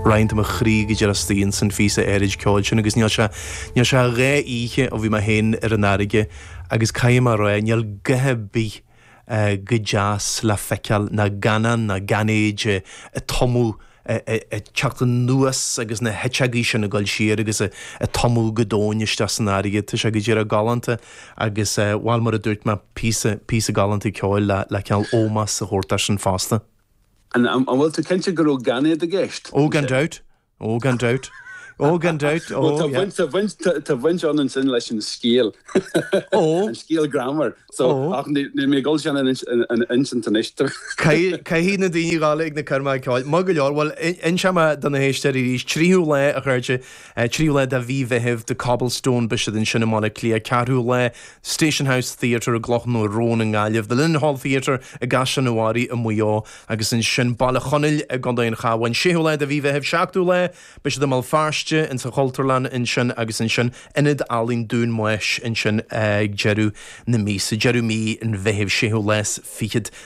Roinnt de mo chroí go díreach istigh ins an phíosa áirid ceoil sin agus níl sé, níl sé dhá oíche ó bhí mé féin ar an fharraige agus caithfidh mé a rá, níl a dhath ar bith chomh deas le feiceáil ná gannán ná gainéid a' tumadh, a' teacht anuas agus na h-eiteagaí sin a goil siar agus a' tumadh go domhain isteach san fharraige. Tá sé go díreach galánta agus, bhuel mar a dúirt mé, píosa, píosa galánta ceoil le cineál ómós a thabhairt air sin fosta. An bhfuil tú cinnte go raibh gainéad i gceist ansin? Ó, gan dabht. Ó, gan dabht. Ó, gan dabht. Ó, Bhuel, tá yeah. baint, tá baint, tá baint ann ansin leis an scéal. Ó. An scéal greannmhar. So, Ó. ach ní, níl mé ag dul sin a insint, a insint anois duit. Caith, caithfidh na daoine a ghabháil ag na coirmeacha ceoil. Maith go leor. Bhuel, in, inseoidh mé do na héisteoirí arís. Tríú lá a chuirte. Tríú lá de Mhí Mheithimh, The Cobblestone, beidh siad ansin i mBaile Átha Cliath, Ceathrú lá, Station House Theatre i gCloch na Rón i nGaillimh, The Linenhall Theatre i gCaisleán an Bharraigh i Maigh Eo, agus ansin Baile Chonaill i gContae an Chabháin, Séú lá de Mhí Mheithimh, Seachtú lá, beidh siad i mBéal Feirste, insa Chultúrlann ansin, agus ansin Ionad Ealaíon Dunamaise ansin ag deireadh na míosa, Deireadh Mí an Mheithimh, Séú lá 's Fichead.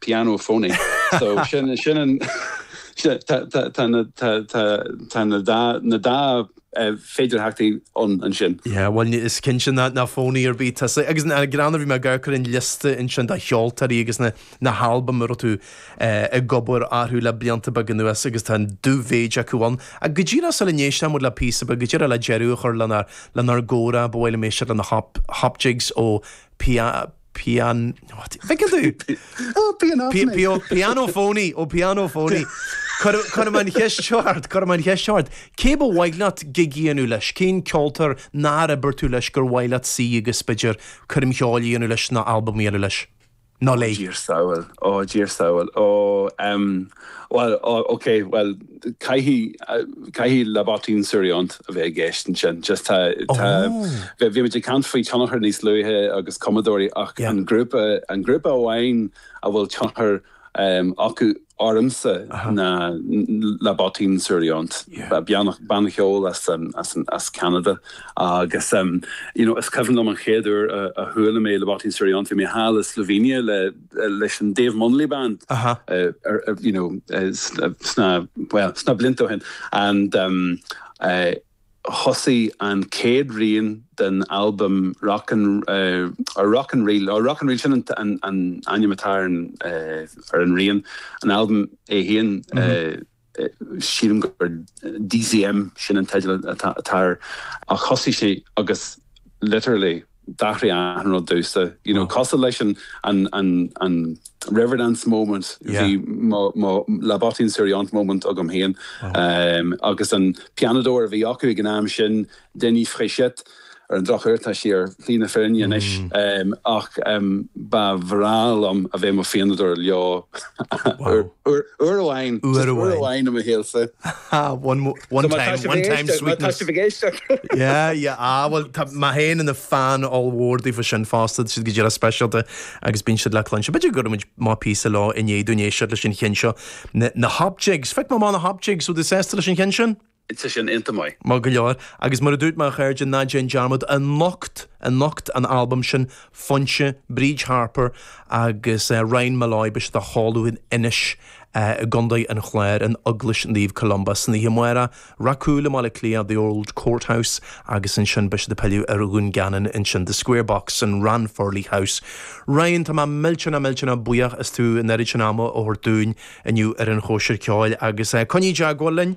Pianophony so sin sin an tá tá tá na tá tá tá na dá na dá féidirtheachtaí ann ansin. Yeah bhuel ní is cinnte nach nach phoney ar bith tusa agus go díreach nuair a bhí mé ag amharc ar an liosta ansin de cheoltóirí agus na na halbaim a raibh tú ag obair orthu le blianta beag anuas agus tá an dubh-mhéid acu ann. Ach go díreach sula n-éistfidh muid le píosa beag go díreach le deireadh a chur lenár lenár gcomhrá ba mhaith liom éisteacht le na hop hop jigs ó Pia pian. Thiocfadh tú! Ó, pianophony! Pianophony! Ó, pianophony! Cuirim an cheist seo ort, cuirim an cheist seo ort, cé ba mhaith leat gig a dhéanamh leis, cén ceoltóir nár oibir tú leis gur mhaith leat suí agus, b'fhéidir, coirm cheoil a dhéanamh leis nó albam a dhéanamh leis nó léi? Ó, Dia ár sábháil, ó, Dia ár sábháil, ó, ehm. Bhuel, ok, bhuel, caithfidh, caithfidh La Bottine Souriante a bheith i gceist ansin, just tá, tá, bhí, bhí muid ag caint faoi tionchar níos luaithe agus cumadóirí ach an grúpa, an grúpa amháin a bhfuil tionchar acu ormsa ná La Bottine Souriante, banna, banna cheoil as, as, as Ceanada agus you know is cuimhin liom an chéad uair a chuala mé La Bottine Souriante, bhí mé thall i Slovenia le, leis an Dave Munnelly Band you know sna bhuel sna blianta ó shin and thosaigh an céad rian den albam Rock and or Rock and Reel or Rock and Reel sin an ainm atá ar an rian an albam é féin sílim gur Xième, sin an teideal atá air. Ach thosaigh sé agus literally d'athraigh achan rud domhsa, you know, cosúil leis an, an, an, an Riverdance moment, bhí mo, mo La Bottine Souriante moment agam féin. Agus an pianadóir a bhí acu ag an am sin, Denis Fréchette. Ar an drochuair tá sé ar shlí na fírinne anois ach ba bhreá liom a bheith i mo phianadóir leo uair amháin, just uair amháin i mo shaolsa. One time, one time sweetness. Má tá sibh ag éisteacht. Yeah, yeah, ah bhuel tá mé féin ina fan ollmhór daofa sin fosta, tá siad go díreach speisialta agus bíonn siad le cluinstin. B'fhéidir go gcuirfidh muid amach píosa leo i ndiaidh dúinn éisteacht leis an cheann seo, na Hopjigs. Phioc mé amach na Hopjigs, bhfuil tú sásta leis an cheann sin? Tá sé sin iontach maith. Maith go leor. Agus mar a dúirt mé a chairde, ná déan dearmad, anocht, anocht an albam sin, Foinse, Bríd Harper agus Ryan Molloy, beidh siad ag ceol in Inis i gContae an Chláir, in Eaglais Naomh Columba, san oíche amárach Ráth Cúil i mBaile Átha Cliath, The Old Courthouse agus ansin beidh siad ag pilleadh ar Dhún Geanainn ansin, The Square Box in Ranfurly House. Ryan, tá mé millteanach millteanach buíoch as tú an oiread sin ama a thabhairt dúinn inniu ar an Chóisir Ceoil agus coinnigh i dteagmháil linn.